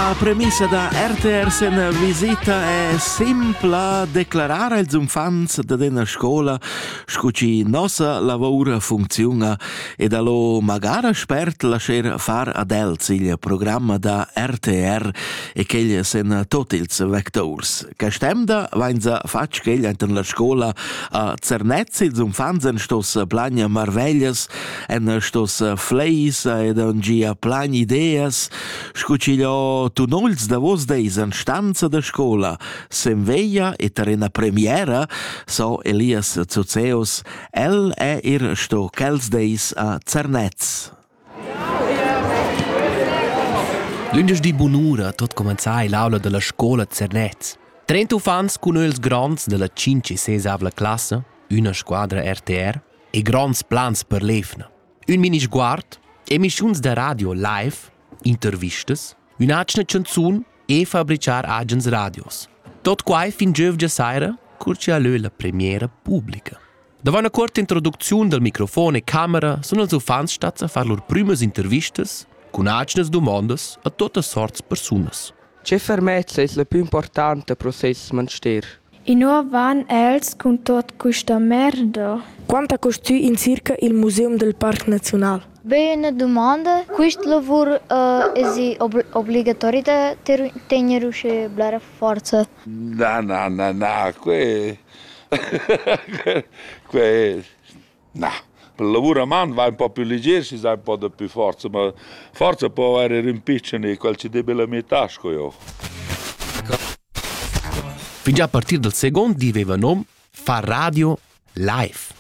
La premissa da RTS en visita è simpla declarar als uffants da dena scola sco ci nossa lavora funziona ed allo magara spert lascer far ad els il programma da RTR e quegl sen tot ils vectors. Castemda vainza fatg quegl enten la scola a Zernez ils uffants en stos plagna marveglias, en stos fleis ed an gia plan ideas, Sco ch'igl ho tunò ils davos dis an stanza da scola, sen veglia e tar ena premiera, so Elias Zuzeus, el è ir sto quels dis a Zernez. Lündeschdi bunura tot comenzà è l'aula della scola Zernez. Trenta uffants cun els gronds della 5 e 6 classa, üna squadra RTR e gronds plans per l'EFNA. Ün minisguard, emischuns da radio live, intervistas, ün'atgna chanzun e fabrichar agens radios. Tot quai fin giövgia saira, cur chi ha lö la premiera publica. Davant una corta introducziun dal microfon e camera sun els uffants stats a far lur prümas intervistas cun atgnas dumondas a totas sorts persunas. Tge fermezza es la pü importanta pro seis manster? Inua van els cun tuot quista merda? Quant ha custü in circa il museum del parc naziunal? Be üna dumanda. Quist lavur uh, es obligatori da tegner usche blera forza? Na, na, na, na, que... que Na, il lavur a man va ün po più liger, schi s'ha ün po dapü forza, ma forsa po avair eir ün pitschen e quel chi debi la metà sco eu. Fingià a partir dal second di veva nom far radio live.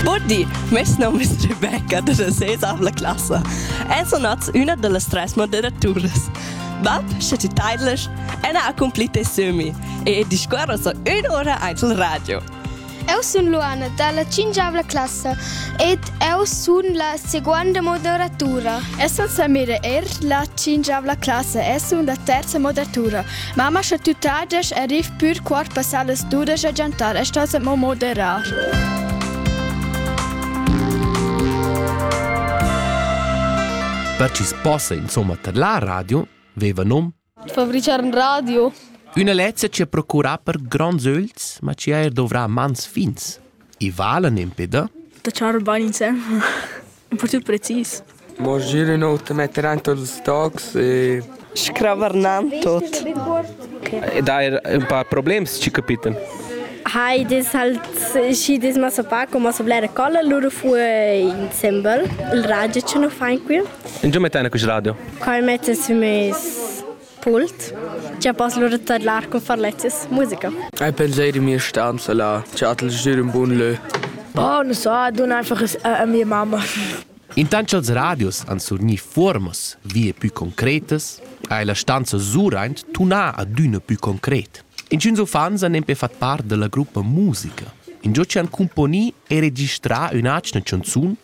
Buddi, mes nom es Rebecca, da ses avla classa. Els sun nats üna da las tres moderaturas. Bab, sche ti taidlasch, Anna ha accomplit e sömi. e discuorra so ün'ura aint il radio. Eu sun Luana dalla cingiavla classa ed eu sun la seguonda moderatura. Essan Samira er la cingiavla classa e sun la terza moderatura. Mamma scha tü tages e riv pür quart passar las dudesch a giantar e stas mo moderar. Per chi's possa insomma tadlar radio, veva nom Fabrichar in radio. Üna lezza chi ha procurà per gronds ögls, ma chi ha eir dovrà mans fins. I vala n'impeda? Da ciar il bagn in sé. Un po' più precis. Mo giro in ot, metter dentro ils stocks e... Scravarnam tot. E da er un paar problems ci capiten. Hai des halt și des masa paco, masa blera colla, loro fu insembel. Il radio ce nu fain qui. In giò mettene quist radio? Quai metta sü meis pult cha poss lura tadlar cun far lezzas musica. Ei penseir in mia stanza là, chatt'el giür ün bun lö. Oh, non so, dun einfach a mia mamma. Intant cha'ls radios han surgni fuormas vie pü concretas, ha la stanza Suraint tunà adüna pü concret. Inchüns uffants han nempe fat part da la gruppa musica. Ingio chi han cumponì e registrà ün'atgna chanzun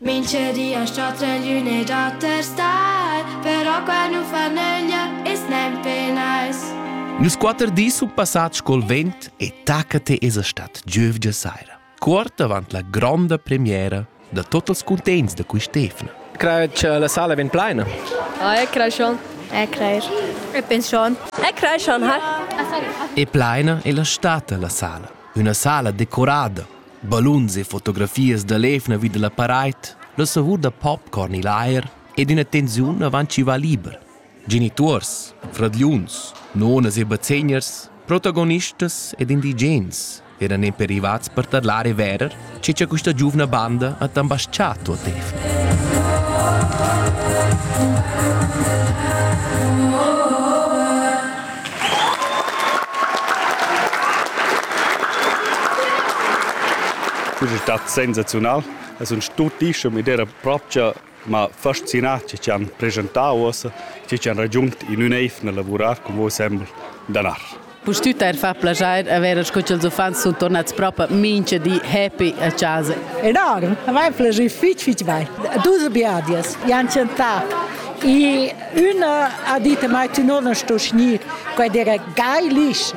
Minchedi as chatta'l üna dater star, però qua nu fa nöglia, i's nempe nice. Nus quatter dis sun passats col vent e taca te esa stat giövgia saira. Cuort avant la gronda premiera da tot els cuntents da quist'efna. Crei che la sala vegn plaina? Ah, e crei schon. E creir. E pens schon. E crei schon, ha. E plaina è la stata la sala. Üna sala decorada balluns e fotografias da l'evna vi da la paraid, la savur da popcorn i'l aer ed üna tensiun avant chi va liber. Genituors, fradgliuns, nonas e bazzegners, protagonistas ed indigens eran nempe rivats per tadlar e verer che cha quista giuvna banda ha tambasciato a Tefni. Quest è stat sensazional. Es un stutissem ed era propcha m'ha fascinà che ci han presentau ossa, che ci han raggiungt in ün eif nel lavurar con voi sembel danar. Pustüt eir fa plaschair avere sco ch'ils uffants sun tornats propa mincha di happy a casa. Enorm, a mai piacü fich fich bain. Dus biadias, Jan Ciantà e Üna ha dit a mai, tu non sto gnir, quai dera geilich.